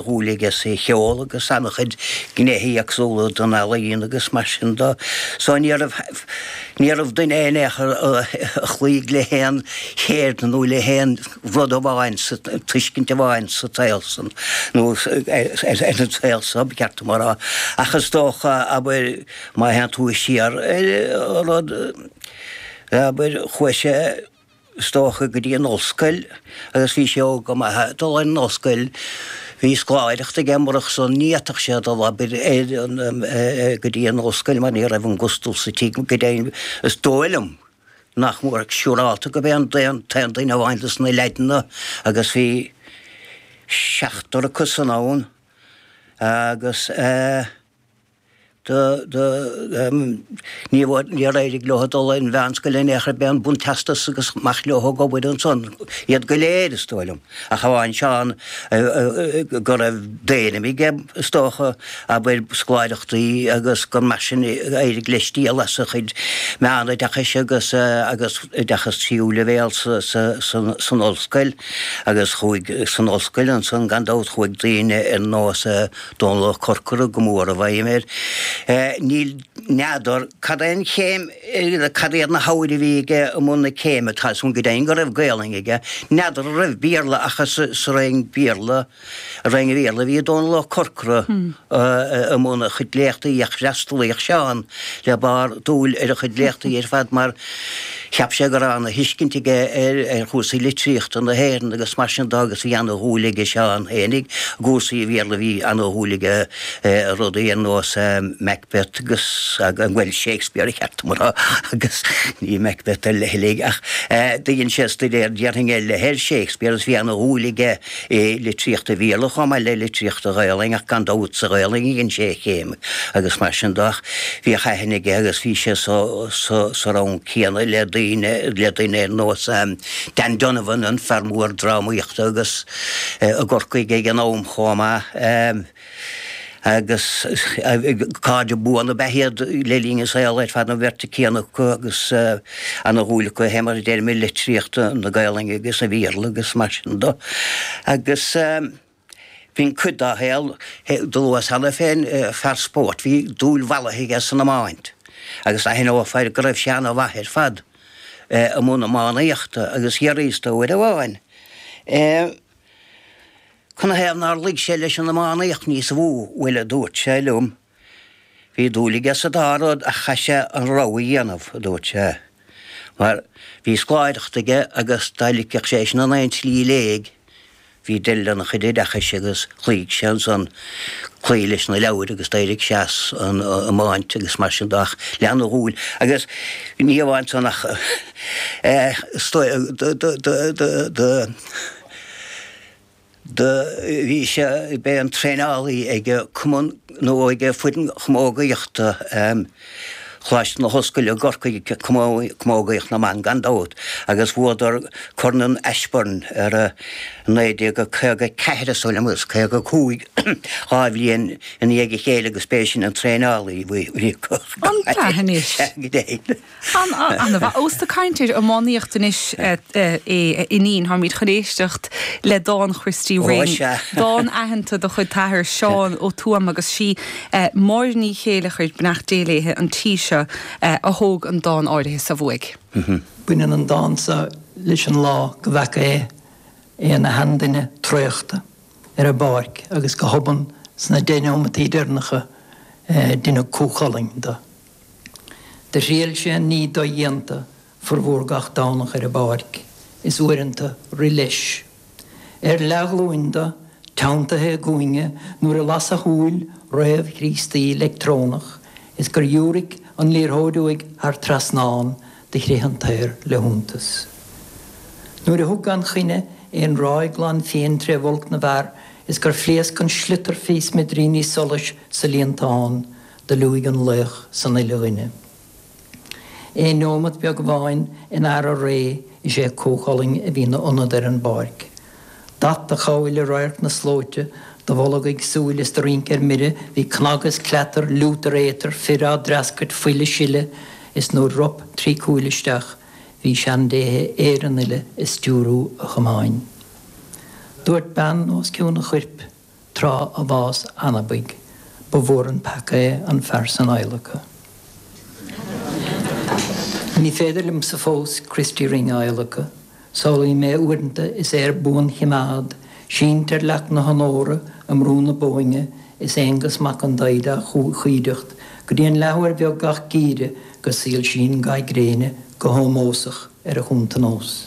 dhúil aige sa cheol agus an-chuid gnéithe éagsúla den ealaíon agus mar sin do so ní raibh ní raibh duine in aon chor a chloígh le haon cheird nó le haon rud amháin, tuiscint amháin sa tsaol san nó ar an tsaol so, ba cheart dom a rá. Ach is dócha, abair, má théann tú siar ar an rud, abair, chuaigh sé, is dócha, go dtí an ollscoil agus bhí sé óg go maith ag dul ar an ollscoil. Bhí scoláireacht aige, murach san ní fhéadfadh sé dul, abair, ar an, eh, go dtí an ollscoil mar ní raibh an gustal sa tigh, go deimhin is dóigh liom nach mór siúrálta gurb é an t-aon duine amháin de na leaideanna agus bhí seachtar acusan ann agus, eh, Níor éirigh leo dul ar an mheánscoil in aon chor, b'é an bunteastas agus amach leo ag obair ansan, iad go léir is dóigh liom, ach amháin Seán go raibh d'ainm aige is dócha, abair, scoláireachtaí agus gur mar sin a éirigh leis díol as a chuid meánoideachais agus oideachas tríú leibhéal san ollscoil agus san ollscoil ansan gan dabht, chuaigh daoine ar nós Dónall Ó Corcora go mór i bhfeidhm air. Níl n'fheadar cad é an chéim cad iad na hábhair a bhí aige i mbun na céime tá a fhios agam go deimhin go raibh Gaelainn aige. N'fheadar an raibh Béarla ach is sa Roinn Béarla Roinn an Bhéarla a bhí Dónall Ó Corcora i mbun a chuid léachtaí ach fhreastalaíodh Seán le barr dúil ar a chuid léachtaí ar fad mar Cheap sé go raibh ana thuiscint aige ar chúrsaí litríochta na hÉireann agus mar sin do agus bhí ana dhúil aige Seán fhéinig i gcúrsaí an Bhéarla bhí ana dhúil aige i rudaí ar nós Macbeth agus bhuel Shakespeare ba cheart dom a rá agus ní Macbeth ar leithligh ach do dhein sé stuidéar déarfainn ar leith ar Shakespeare agus bhí ana dhúil aige i litríocht an Bhéarla chomh maith le litríocht an Ghaelainn ach gan dabht sa Ghaelainn a dhein sé a chéim agus mar sin de bhíodh aithne aige agus bhí sé sa rang céanna le le daoine ar nós Dan Donovan, an fear mór drámaíochta agus i gCorcaigh ag an am chomh maith. agus cairde buana ab ea iad le linn a saoil ar fad, an bheirt chéanna acu agus ana dhúil acu a théama i dtéarmaí litríochta na Gaelainne agus an Bhéarla agus mar sin do. Agus b'in cuid dá shaol. Dúradh cheana féin, fear spóirt, bhí dúil mhallaithe aige san iomáint agus d'aithneofá go raibh sé ana mhaith ar fad i mbun iománaíochta agus d'fhiafraíos de uair amháin é Canathaobh nár luigh sé leis an iománaíocht níosa mhó? Bhuel, a dúirt sé liom, bhí dúil aige sa dá rud ach chaith sé an rogha a dhéanamh, a dúirt sé, mar bhí scoláireacht aige agus dá ligfeadh sé sin in aon tslí i léig, bhí deireadh lena chuid oideachais agus chloígh sé ansan cloí leis na leabhair agus d'éirigh sé as an iomáint agus mar sin de ach lean a dhúil agus ní amháin san ach Do bhí sé, b'é an traenálaí ag cumann nó ag foireann chamógaíochta Choláiste na hOllscoile i gCorcaigh, Camógaíocht na mBan gan dabht, agus bhuadar Corn an Ashbourne ar 1954 is dóigh liom agus 55 dhá bhliain i ndiaidh a chéile agus b'é sin an traenálaí. An cath anois! An-mhaith. Ós ag caint ar iománaíocht anois sinn, táimid chun éisteacht le dán Christy Ring. Ó sea. Dán aitheanta de chuid t'athar Seán Ó Tuama agus is í Máire Ní Chéilleachair, beannacht Dé léithe, an tí seo, a thóg an dán áirithe so uaidh. Baineann an dán so leis an lá go bhfeaca sé é ina sheanduine traochta ar an bpáirc agus go hobann sna deich neomataí deireanacha deineadh Cú Chulainn de. Do thriail sé an ní dodhéanta formhór gach Domhnach ar an bpáirc, is uaireanta rith leis. Ar leathghlúin dó, teanntaithe i gcúinne nuair a las a shúil réamh-Chríostaí leictreonach is gur dhiúraic an liathróid uaidh thar trasnán, do chrith an t-aer le hiontas. Nuair a thug gan choinne aon ráig ghlan fiain tré bhulc na bhfear is gur phléasc an sliotar fé smidiríní solais sa líontán, Do liúigh an laoch san uile dhuine. Aon neomat beag amháin in earr a ré is é Cú Chulainn a bhí 'na ionad ar an bpáirc. D'at a chabhail i radharc na slóite, do bholgaigh súil is do rinc ar mire bhí cnag is cleatar, liútar éatar, fir á dtreascairt, fuil á sileadh, is nuair rop trí cúil isteach bhí seandéithe Éireann uile ag stiúrú a chamáin. Dúirt bean os cionn a choirp. Tráth a bháis anabaidh ba mhór an peaca é an fear san a adhlacadh. Ní féidir liomsa fós Christy Ring a adhlacadh. Samhlaím é uaireanta is é ar buanchoimeád, sínte ar leac na honóra i mBrú na Bóinne is Aonghas Mac an Daghda á choimhdeacht go dtí an leathuair bheag gach geimhreadh go soilsíonn ga gréine go hómósach ar a chuntanós.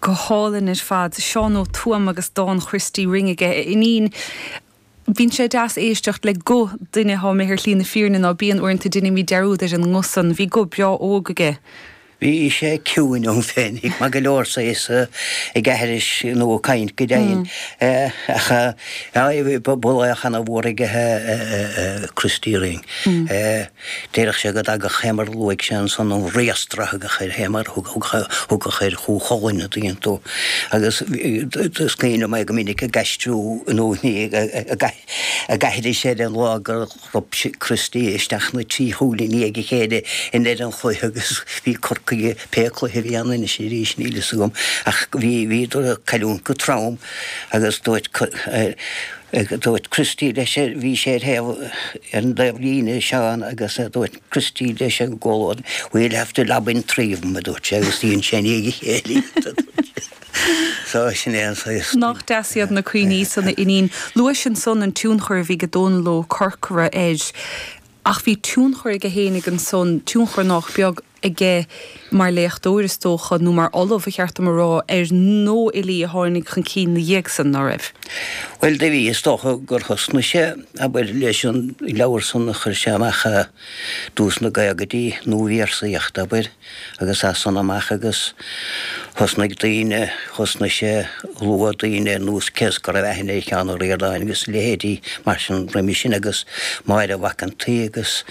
Go hálainn ar fad. Seán Ó Tuama agus dán Christy Ring aige. A Fhinín, bíonn sé deas éisteacht le guth duine atá imithe ar shlí na fírinne, ná bíonn? Uaireanta déanaimid dearúd ar an nguth san. Bhí guth breá óg aige. Bhí sé ciúin ann féinig, maith go leor is é ag aithris nó ag caint go deimhin. Ach ba laoch ana-mhór aige é Christy Ring. Déarfadh sé go dtagadh sé mar a luaigh sé ansan an riastradh a thagadh air fhéin mar a thagadh ar Chú Chulainn an dtuigeann tú agus is cuimhin liom é go minic ag aistriú in úithní a gaithridh sé ar an lá gur rop sé Christy isteach na trí chúl i ndiaidh a chéile i ndeireadh an chluiche agus bhí Corcaigh pé cluiche a bhí ann anois arís níl fhios agam ach bhíodar ag cailliúint go trom agus dúirt dúirt Christy leis bhí sé ar thaobh ar an dtaobh líne Seán agus dúirt Christy leis an gcomhluadar we'll have to lob in three of them a dúirt sé agus dhein sé i ndiaidh a chéile iad a dúirt sé. So sin é an saghas. Nach deas iad na cuimhní san a Fhinín. Luais ansan an tionchar a bhí ag Dónal Ó Corcora air. Ach bhí tionchar aige féinig ansan, tionchar nách beag. aige mar léachtóir is dócha, nó mar ollamh ba cheart dom a rá, ar nuafhilí a tháinig chun cinn ina dhiaidh san, ná raibh? Bhuel, do bhí. Is dócha gur thosnaigh sé, abair, leis an leabhar san a chuir sé amach i dtús na gcaogaidí, Nuabhéarsaíocht, abair, agus as san amach agus. Thosnaigh daoine, thosnaigh sé ag lua, daoine ar nós, cé is go raibh aithne ar Sheán Ó Ríordáin agus leithéidí mar sin roimis sin agus Máire Mhac an tSaoi agus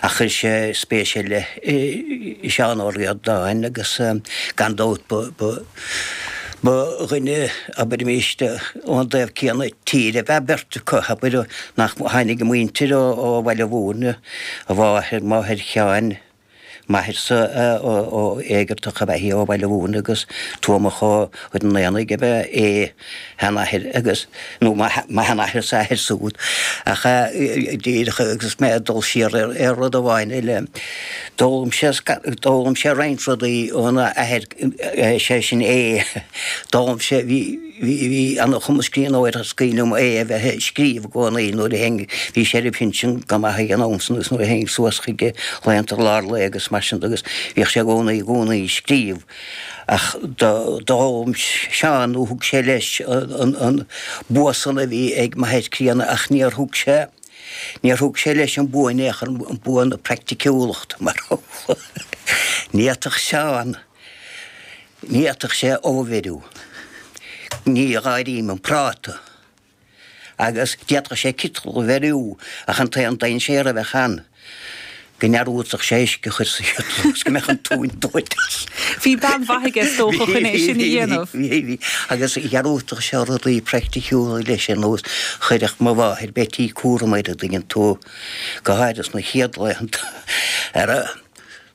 ach chuir sé spéis ar leith i Seán Ó Ríordáin agus gan dabht ba ba dhuine abairimis ón dtaobh céanna tíre ab ea beirt acu abair nach tháinig a muintir ó Bhaile Bhúirne, a mháthair, máthair Sheáin, m'atharsa, Éigeartach ab ea í ó Bhaile Bhúirne agus Tuamach ó Chúil an Aonaigh ab ea é a sheanathair agus nó mo mo sheanathairse, a athair siúd, ach díreach agus mé ag dul siar ar ar rud amháin eile. D'fhoghlaim sé d'fhoghlaim sé roinnt rudaí óna athair sé sin é. D'fhoghlaim sé bhí Bhí an-chumas scríbhneora, is cuimhin liom é a bheith ag scríobh i gcónaí nuair a théinn, bhí sé ar a phinsean go maith ag an am san agus nuair a théinn suas chuige laethanta lár lae agus mar sin de agus bhíodh sé i gcónaí, i gcónaí ag scríobh. Ach d'fhoghlaim Seán nó thug sé leis an bua san a bhí ag m'athair críonna ach níor thug sé, níor thug sé leis an bua in aon chor, an bua na praiticiúlachta mar ní fhéadfadh Seán. D'fhéadfadh sé ubh a bheiriú, ní áirím an práta, agus d'fhéadfadh sé citeal a bheiriú ach an t-aon dainséar a bheadh ann go ndearúdfadh sé uisce a chur sa chiteal agus go mbeadh an tóin dóite. Bhí bean mhaith aige is dócha chun é sin a dhéanamh. Bhí, bhí, bhí, agus dhearúdfadh sé rudaí praiticiúla leis ar nós chuireadh mo mháthair Bheití cúram ar a dtuigeann tú, go háirid sna chéad laethanta, ar a.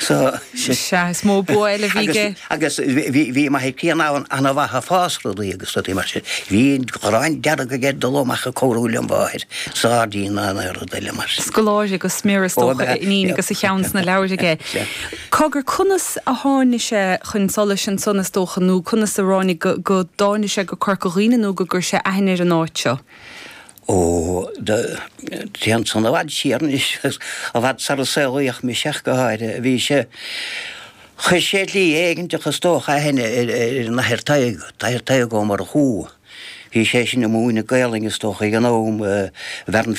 So. Sea, is mó bua eile a bhí aige. Agus bhí Mam Uí Chíobháin an-mhaith ag fás rudaí agus rudaí mar sin. Bhí gráin dearg aige dul amach ag cabhrú lem mháthair sa ghairdín ná aon rudaí eile mar sin. Scoláire go smior is dócha, ab ea é agus a cheann sna leabhair aige. Cogar, conas a tháinig sé chun solais ansan is dócha nó conas a ráinig go dtáinig sé go Corca Dhuibhne nó gur chuir sé aithne ar an áit seo? Ó, téann san i bhfad siar anois, agus i bhfad sar a saolaíodh mise ach go háirithe. Bhí sé, chuir sé slí éiginteach is dócha aithne ar an Athair Tadhg, Athair Tadhg Ó Murchú. Bhí seisean ag múineadh Gaelainne is dócha ag an am i bhFearann